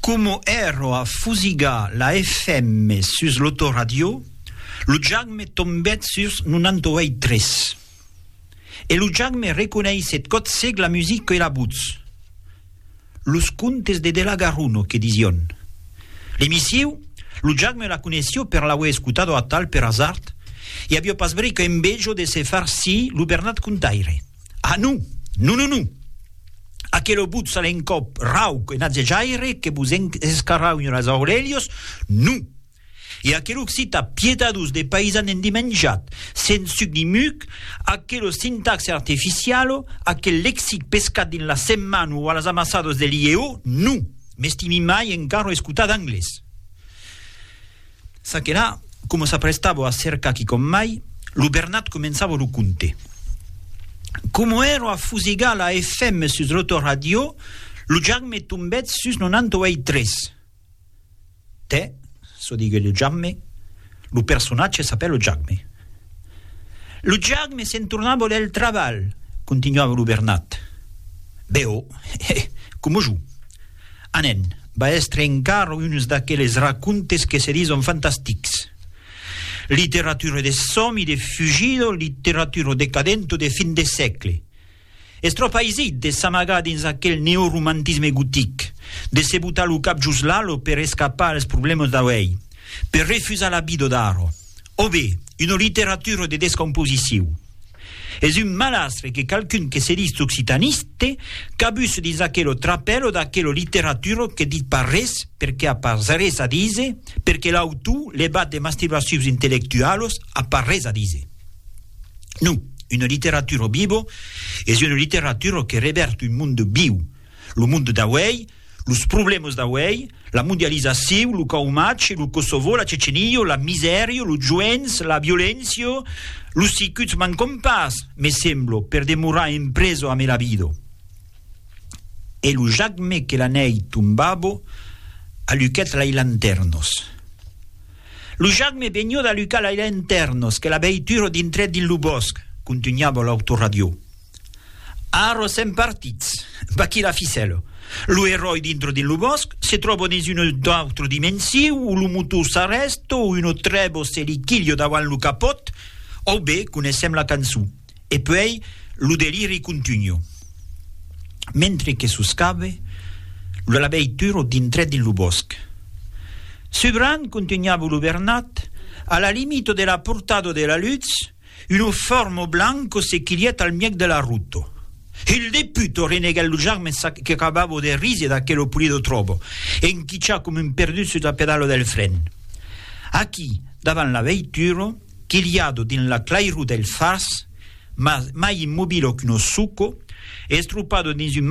Coma ero a fusigar la FM sus l'autoradiò, lo jack me tombèt sus 98,3. E lo jack me reconeissèt còth sec la music que la votz. Los contes de Delagaruno, que disión. L'emissiu, lo jack me la coneissió per l'auer escotado atal per azard, e avió pas bric envejo de se far sii lo Bernat Contaire. Ah non! Non, non, non! Aquelo butz a l'encòp rauc e natzejaire que vos escarraunha las aurelhas, non! E aquel occita piedadós de paisan endimenjat, sens suc ni muc, aquela sintaxe arteficiala, aquel lexic pescat dins la setmana o a las amassadas de l'IEO, non! M'estimi mai encara escotar d'anglés. Ça que la, coma s'aprestava a cercar quicòm mai, lo Bernat començava lo conte. Coma èra a fusegar la FM sus l'autoradiò, lo Jambe tombèt sus 98,3. Tè, çò diguèt lo Jambe, lo personatge s'apèl lo Jambe. Lo Jambe se'n tornava del trabalh, continuava lo Bernat. Be-o, coma jo. Anen, va èstre encara uns d'aqueles racontes que se dison fantastics. Literatura de sòmi, de fugida, literatura decadenta de fin de sègle. Es tròp aisit de s'amagar dins aquel neoromantisme gotic, de se botar lo cap jos l'alo per escapar als problèmas d'auèi, per refusar la vida d'ara. O be, una literatura de descomposiciu. Es un malastre que qualqu'un que se ditz occitaniste cabuse dins aquelo trapèlo d'aquela literatura que dit pas res perque a pas res a díser, perque l'autor levat de mastirbacius intellectualos a pas res a díser. Non, una literatura viva es una literatura que revèrt un monde viu, lo monde d'auèi, Los problèmas d'auèi, la mondializacion, lo caumatge, lo Kosovo, la Cecenia, la misèria, los joents, la violéncia, los sicuts mancon pas, me semblo, per demorar en preso a Melabido. E lo jacme que la nèi tombabo aluquèt lai lantèrnos. Lo jacme vegnió d'alucar lai lantèrnos que la veitura dintrèt dins lo bòsc, contunhava l'autoradió. Ara sèm partits. Vaquí la ficèla. Lo eròi dintre dins lo bòsc se tròba dins una autra dimensiu o lo motor s'arrèsta o una trèba se li quilha davant lo capòt o be coneissèm la cançon. E puèi lo deliri contunha. Mentre que soscabe, lo labeituro dintrèt dins lo bòsc. Subran, contunhava lo Bernat, a la limita de la portada de la lutz, Uno fermo blanco se quilièt al mièg de la ruta. Il deputo reneguèt lo jarmen sac que acabava de risier d'aquelo pulido tròbo, enquichar coma un perdut sus la pedala del fren. Aquí, davant la veitura, quiliado dins la clairor dels fars, mas mai immobilo qu'uno suco, estropado dins un